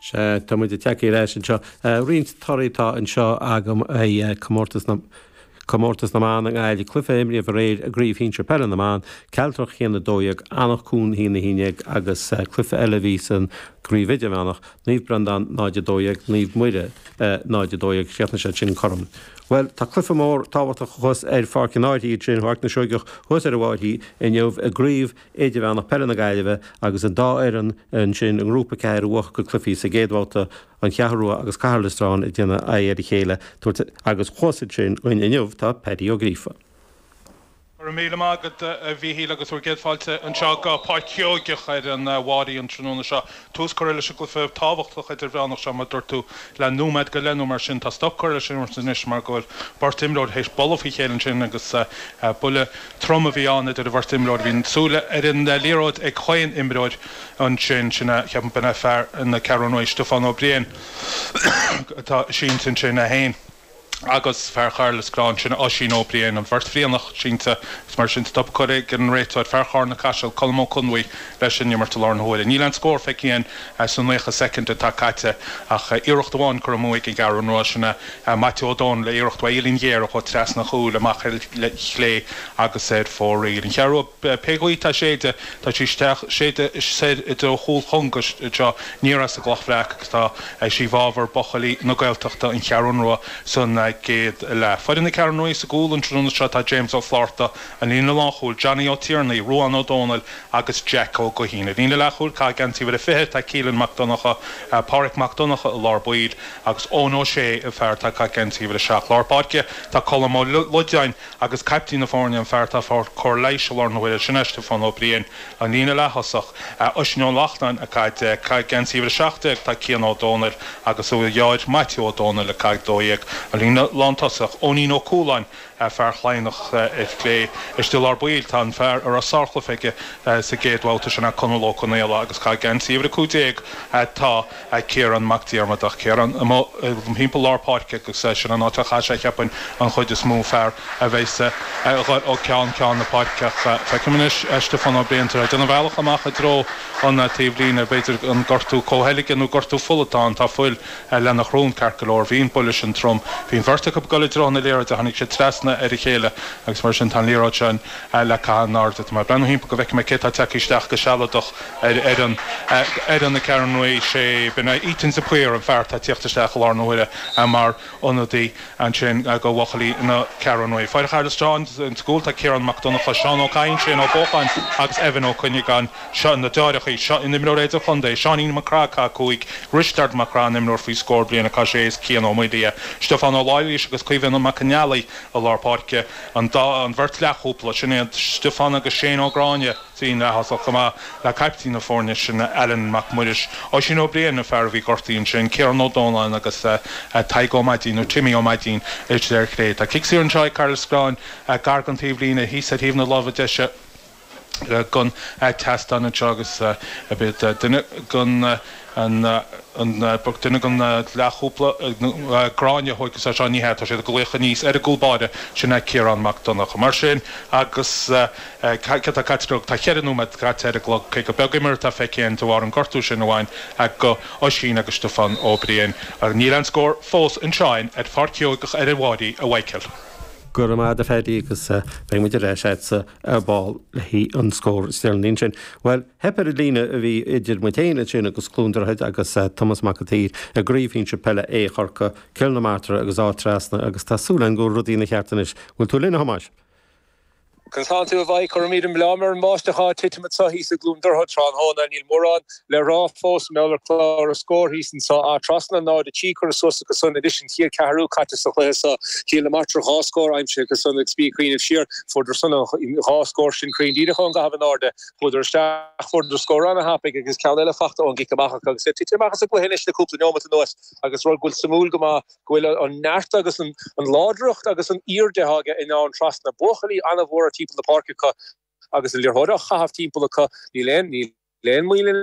Sea, tá muid ag teacht ar ais anseo. Roinnt torthaí atá anseo agam ó Chomórtas na Comórtas na mBan i nGaillimh, cluiche a imríodh aréir i gCraobh Shinsear Peile na mBan, Cealtrach 1, 12, Anach Cuain 1, 11 agus cluiche eile a bhí san gCraobh Idirmheánach, Naomh Breandán 0, 12, Naomh Muire 0, 12. Chríochnaigh siad sin cothrom. Bhuel, tá cluiche mór tábhachtach thuas ar Pháirc an Fhairche sin, Páirc na Seoigeach thuas ar an bhFairche inniu i gCraobh Idirmheánach Peile na Gaillimhe agus an dá fhoireann ansin i nGrúpa 4 a bhuaigh a gcluichí sa gcéad bhabhta, An Cheathrú Rua agus Cathair Loistreáin, ag déanamh aghaidh ar a chéile tabhairt agus thuas ansin againn inniu tá Paddy Ó Gríofa. Go raibh míle maith agat, a Mhíchíl, agus bhur gcéad fáilte anseo go Páirc Sheoigeach ar an bhFairche an tráthnóna seo. tús curtha leis an gcluiche tábhachtach idirmheánach seo, mar a dúirt tú, le nóiméad go leith nó mar sin. Tá stop curtha leis an imirt anois mar go bhfuil beirt imreoir théis bualadh faoi chéile ansin agus buille trom a bhí ann idir an bheirt imreoir. Bhí na súile ar an liathróid ag chaon imreoir ansin. Sin, ceapaim, b'in é fear na Ceathrún Rua, Stiofán Ó Briain, atá sínte ansin, 1. agus fear Chathair Loistreáin sin Oisín Ó Briain an bheirt Bhrianach sínte is mar sin stop curtha ag an réiteoir fear Charna Caiseal Colm Ó Conbhuí leis an imirt i láthair na huaire. Níl aon scór feicthe againn sa naocha soicind atá caite ach iarracht amháin curtha amú ag an gCeathrú Rua sin é Maitiú Ó Domhnaill le iarracht ó uillinn ghéar a chuaigh trasna an chúil amach ar chlé agus ar fóraoil an Cheathrú Pé gaoth atá ag séideadh, tá sí isteach, ag séideadh soir i dtreo chúl Chonga, seo aniar as an gCloch Bhreac agus tá sí i bhfabhar buchaillí na Gaeltachta, an Cheathrún Rua san gcéad leath. Foireann na Ceathrún Ruaidh sa gcúl an tráthnóna seo tá James Ó Flátharta, an líne lánchúil, Johnny Ó Tiarnaigh, Ruán Ó Dónaill agus Jack Ó Gaoithín. An líne leathchúil, ag caitheamh geansaí uimhir a 20, tá Keelan Mac Donnacha, Páraic Mac Donnacha i lár baill agus Eoin Ó Sé an fear atá ag caitheamh geansaí uimhir a 7. Lár páirce tá Colm Ó Loideáin, agus caiptín na foirne an fear atá ag fáil cóir leighis i láthair na huaire sin é Stiofán Ó Briain an líne leath-thosach, Oisín Ó Lachtnáin ag caitheamh deich, ag caitheamh geansaí uimhir a seacht déag tá Cian Ó Dónaill agus a dheartháir Maitiú Ó Dónaill ag caitheamh dó dhéag, an líne lán-tosach, Eoinín Ó Cualáin fear Chladhnach ar chlé, istigh i lár baill tá an fear a raibh sárchluiche aige sa gcéad bhabhta sin é Conall Ó Conaola agus ag caitheamh geansaí uimhir a cúig déag tá. a Ciarán Mac Diarmada ach Ciarán amuigh timpeall lár páirce agus sin an áit a chaithfidh sé cheapfainn an chuid is mó fear a bheas ag goil ó cheann ceann na páirce ach feicim anois Stiofán Ó Briain tar éis déanamh a bhealach amach i dtreo an taobh líne b'fhéidir an gortú comhtholgtha nó gortú fola atá ann tá fuil lena shrón ceart go leor bhí an buille sin trom bhí an bheirt acu ag dul i dtreo na liathróide tháinig siad trasna ar a chéile agus mar sin tá an liathróid sin le caitheamh in airde tá mé ag breathnú thimpeall go bhfeicfidh mé cé atá tagtha isteach go sealadach ar ar an foireann na Ceathrún Rua 6 been a Eaton de Paor an fear atá tíocht isteach i lár na huaire a mar ionadaí ansin a go bhuachaillí na Ceathrún Rua foireann Chathair Loistreáin insa gcúl tá Ciarán Mac Donncha Seán Ó Cadhain Shane Ó Bócháin agus Evan Ó Cuinneagáin seo na deoireachaí seo an imreoir idirchontae Seáinín Mac Craith caitheamh 5 Risteard Mac Craith an imreoir faoi scór bliana caitheamh 6 is Cian Ó Maolaodha Stiofán Ó Laighléis agus Caoimhín Mac an Fhailligh i lár páirce an dá an bheirt leathchúpla sin iad Stiofán agus Shane Ó Gráinne líne leath-thosach chomh maith le caiptín na foirne sin, Alan Mac Muiris, Oisín Ó Briain, an fear a bhí gortaithe ansin, Ciarán Ó Dónalláin agus Tadhg Ó Maidín, nó Timmy Ó Maidín istigh ar chlé. Tá cic saor anseo ag Cathair Loistreáin gar den taobhlíne, thíos ar thaobh na láimhe deise den tseastán anseo agus beidh duine den. an duine den leathchúpla, Gráinne, a thóigfeas é seo, ní hea, tá siad ag glaoch aníos ar an gcúl báire, sin é Ciarán Mac Donncha. Mar sin, agus cad tá caite acu? Tá cheithre nóiméad caite ar an gclog, cé gur beag imirt atá feicthe againn de bharr an gortú sin amháin ag Oisín agus Stiofán Ó Briain. Níl aon scór fós anseo ar Pháirc Sheoigheach ar an bPrairie a Mhaidhcil. Go raibh maith agat a Phaddy agus beidh muid ar ais a'dsa ar ball le haghaidh an scór is deireanaí ansin. Bhuel. Theip ar an líne a bhí idir muid féin ansin agus Cluain Droichid agus Tomás Mac an tSaoir i gCraobh Shinsir Peile A Chorcaí, Cill na Martra agus Áth Trasna agus tá súil againn go bhfuil rudaí ina gceart anois. Bhfuil tú linn, a Thomáis? Conas tánn tú a Mhaidhc, Cuirimid an blame ar an mbáisteach atá ag titim anseo thíos i gCluain Droichid tráthnóna. Níl mórán le rá fós mar gheall ar Chlár an Scóir thíos anseo. Áth Trasna 0-3 curtha suas acu san insan chéad cheathrú caite sa chluiche seo. Cill na Martra dhá scór aimsithe acu san agus mé ag cuimhneamh siar. Fuaireadar san dhá scór sin cruinn díreach ón gcaitheamh in airde. Chuadar isteach, fuaireadar scór an-tapaidh agus ceann eile faighte ón gcic amach acu agus iad tite amach as an gcluiche anois le cúpla neomat anuas agus rud go bhfuil suimiúil go maith go bhfuil an neart agus an láidreacht agus an aoirde atá aige in Áth Trasna buachaillí an-mhór timpeall na páirce acu agus an liathróid á chaitheamh timpeall acu níl aon níl aon mhoill ann